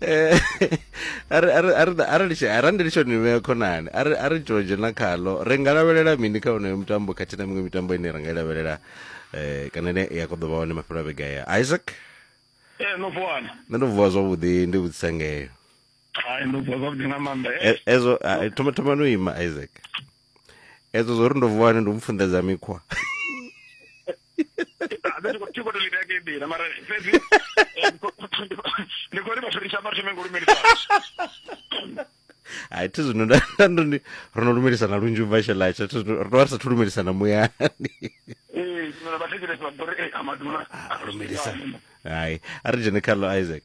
eh, arali ndi tshone vhea khonani a ri tshoo dzhena khalo ri nga lavhelela mini kha onoyo mutambo khathihi na miṅwe mitambo ine ra nga i lavhelela um kana ine ya kho ḓo vha hone mafhelo a vhega ya isaac ee eh, no vuwana nṋe ndo vuwa zwavhuḓi ndi vhudzisa ngeyo hai ndo vuwa zwavhuḓi nga maanḓa hezwo thoma thoma no ima isaac edzo zwo ri ndo vuwa ni ndo mfunḓedza mikhwa ti khou to ḽi vhea nḓila mara fhedzi ndi khou ri vhathu ri shama ri thome ngo lumelisa hai thi zwino ndo ndi ro no lumelisana lunzhi u bva shelatsha thi zwino ro tovha ri sathu lumelisana muyani lumelisa hai a ri dzhene khaḽo isaac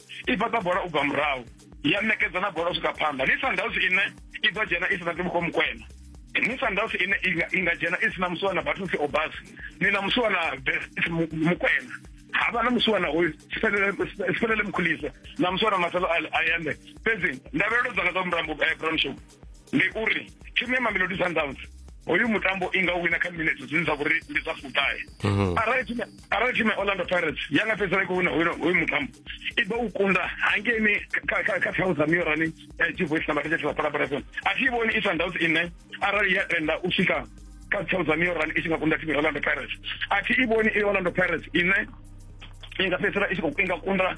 i fhaṱa bola u bva murahu ya ṋekedza na bola u swika phanḓa ni sundowns ine i ḓo dzhena i si na tibukho mukwena ni sundowns ine i nga dzhena i si na musi wana battles obas ni na musi wana mukwena ha vha na musi wana hoyu sifelele mukhulisa na musi wana masalo ayande fhedzi ndavhelelo dzanga dza murambo eh, brown show ndi uri thimu ya mamelodi sundowns hoyu mutambo i nga wina kha minutes zwine zwa vhori ndi zwa fuṱahe mhm. arali thimu arali thimu ya orlando pirates ya nga fhedzisela i khou wina hoyu mutambo i ḓo u kunda hangeini kha thawu dza miorani eh, chivoice na mathetshethe vha palaparasoni a thi vhoni i sundowns ine arali ya tenda u swika kha thawu dza miorani i tshi nga kunda thimu ya orlando pirates a thi i vhoni i orlando pirates ine i nga fhedzisela i tshi khou inga kunda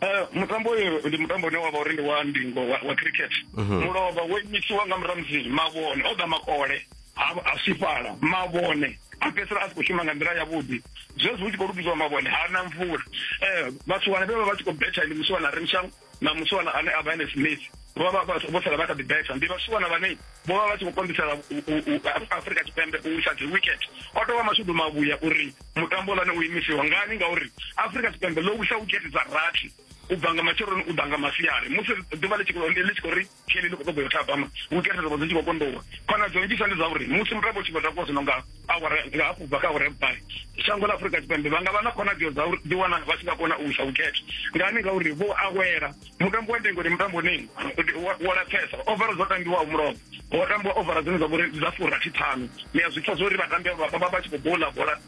Eh, mutambo uyu ndi mutambo une wavha uri ndi wa ndingo wa, wa cricket mhm. mulovha wo imisiwa nga muramzi mavhone o ḓa makole a swifhala mavhone a fhedzisela a si khou shuma nga nḓila yavhuḓi zwezwi hu tshi khou lugiziwa mavhone ha na mvula eh, vhathu wane vhe vha vha tshi khou betha ndi musiwana remshang na musiwana ane a vha ene smith vho vha vho sala vha kha ḓi betha ndi vhasiwana vhane vho vha vha tshi khou konḓisela afrika tshipembe u isa dzi wicket o tovha mashudu mavhuya uri mutambo lane u imisiwa ngani ngauri afrika tshipembe ḽo wisa wikete dza rathi u bva nga matsheloni u ḓa nga masiari musi ḓuvha ḽi tshi khou ri kheli ḽi khou ṱoḓa yo thabama wikete dzobo dzi tshi khou kondowa khonadzeo nnzhisa ndi zwa uri musi mutambo u tshi khou takuwa zwino nga awara nga hafhu bva kha awara ya vhuṱahe shango ḽa afrika tshipembe vha nga vha na khonadzeo dza uri ḓiwana vha tshi nga kona u wisa wikete ngani ngauri vho awela mutambo wa ndingo ndi mutambo nini wo lapfesa ovara dzo tambiwaho mulomo ho tambiwa ovara dzine dza vhori dza furathi ṱhanu ni a zwi pfa zwori vhatambi vha vha tshi khou bola bola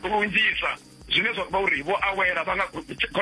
lunzhisa zwine zwa vha uri vho awela vha nga khona